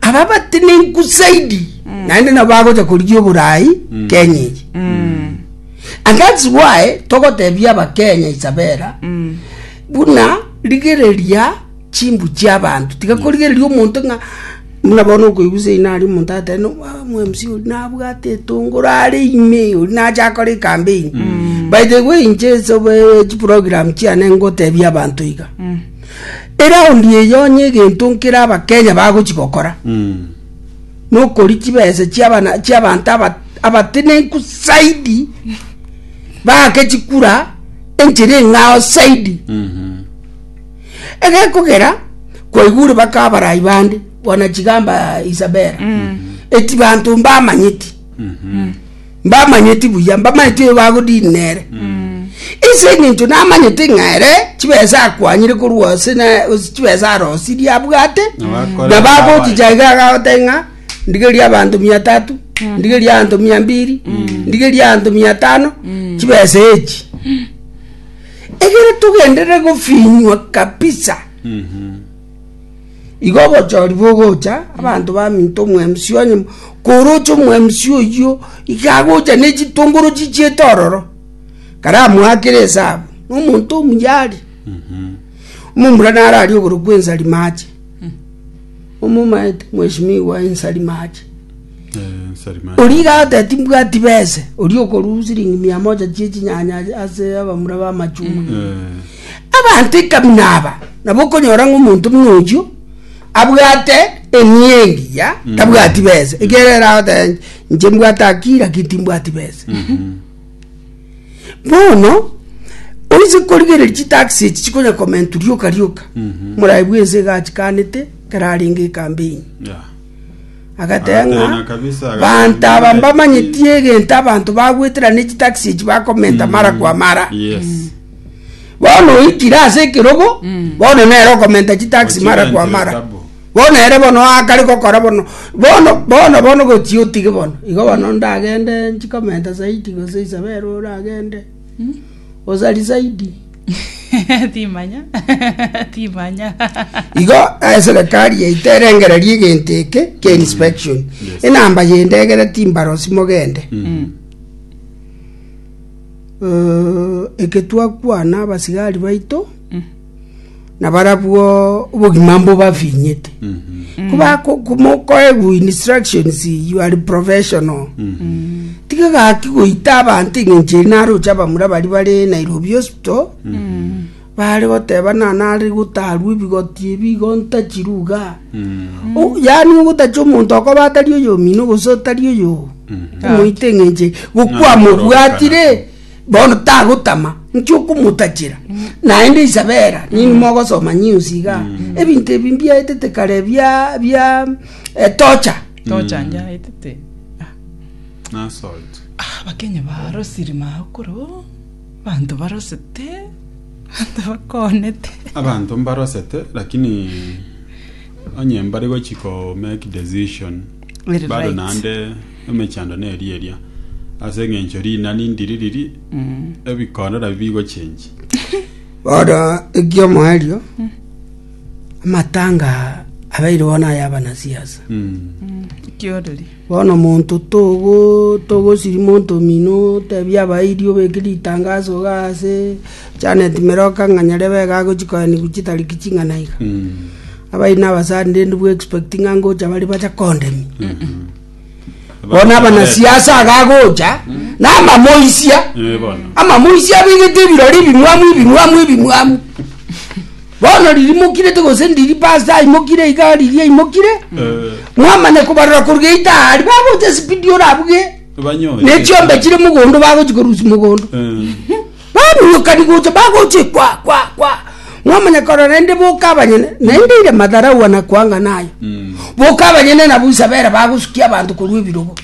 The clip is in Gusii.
aba abatenenku zaidi naende nabo bagocha korigia oborai kenya eye and thats why togotebia abakenya isabera buna rigereria chimbu chia abanto tiga korigereria omonto ng'a buna bono okoigusa ina aria omonto agoteba no ah, omwemsi oria nabwate etongoro are ime oria nacha akore ekambeini by the way inche ase obe chiprogram chiane ngotebia abanto iga Eraundi eye onye egento nkere Abakenya bagochi gokora nokori chibesa chiabanto abatenenku saidi baake chikura enchera eng'ao saidi egekogera kwaigure baka abarai bande bwana chigamba Isabela eti banto mbamanyeti Mbamanyeti buya, mbamanyeti oyo bagodini nere. Ase eng'encho namanyete ng'a ere chibesa akwanyire korwa ase na ase chibesa arosirie abwate, Nabakore na bagochicha iga agagote ng'a ndigerie abanto mia tatu, ndigerie abanto mia mbiri, ndigerie abanto mia tano, chibesa echi. Egere togenderere gofinywa kabisa. Igo obochori bogocha, abanto baminto omwemusi onye, koroche omwemusi oyio, iga agocha ne chitongoro chichiete ororo, karamoakere esabu, na omonto omuyari. Omomura naro aria oborokwa ensari mache, omomaete mweshimiwa ensari mache. Oria iga agoteba mbwati bese, oria okorwa siringi mia moja chie chinyanya ase abamura bamachungwa. Abanto ikabina aba nabo okonyora ng'a omonto buna oyio abwate enia engiya mm. tabwati besa mm. ekero eragote nche mbwate akiri lakini timbwati besa mm-hmm. bono oise korigereria chitaxi echi chikonya komentu rioka rioka mm-hmm. morayi bwense gachikanete kararenge ekambeini agatenga bantu aba mbamanyetie egento abanto bagweterana echitaxi echi bakomenta mm. mara kwa mara yes. bono oikire ase ekerogo mm. bono nere okomenta chitaxi mara kwa mara bono ere bono akare gokora bono bono bono bono gochi otige bono igo bono ndagende nchikomenta zaidi gose isabere oragende mm. osari zaidi timanya timanya igo eserikari eh, yaito erengereria egento eke kia mm. inspection enamba yendegere timbaro simogende mm. eketwakwana abasigari baito nabarabwo obogima mbo bafinyete kubakomokoegwa instructions you are professional tiga gaki goita abanto eng'encho eri naro ocha abamura bari bare nairobi hospital Baare goteba nane are gotarwa ebigoti ebi igo ntachirwe iga. O- Yaani ogotachia omonto okoba atari oyomino gose otari oyo omoite eng'enche gokwa mobwatire bono tagotama nki okomotachera naende isabera nini mogosoma news iga ebinto ebi mbiaetete kare bia bia eh, torture tochanja etete Assault. abakenya barosiri maokoro Abanto mbarosete, mbakoonete. Abanto mbarosete lakini onye mbare gochi ko make decision Very bado right. naende emechando neri eria ase eng'encho rinani ndiri riri ebikorera bigochenji Bono eki'omoerio, amatanga abeire bono ay'abanasiasa. Mm. Kioreri. Bono monto togosiri monto omino, otebie abairi obeke ritangaso iga ase Janet Meroka ng'a nyarebe iga agochi koenigwa chitariki ching'ana iga. Abairi na abasani rende bu expect ng'a ngocha bare bacha kondemia. Bono abanasiasa iga agocha, na amamoisia, Eh, bono. amamoisia abegete ebirori ebimwamu ebimwamu ebimwamu. Bono ririmokirete gose ndiribaa ase aimokire iga riria aimokire, mwamanya kobarora koruga eita aari bagocha esipidi orabuge Banyoe. ne chiombe chire mogondo bagochi korusia mogondo Eh. baminyokani gocha bagoche kwa kwa kwa mwamanya korora naende boka abanyene naende ire madharau anakuanga nayo boka abanyene nabo isabera bagosukia abanto korwa ebirogo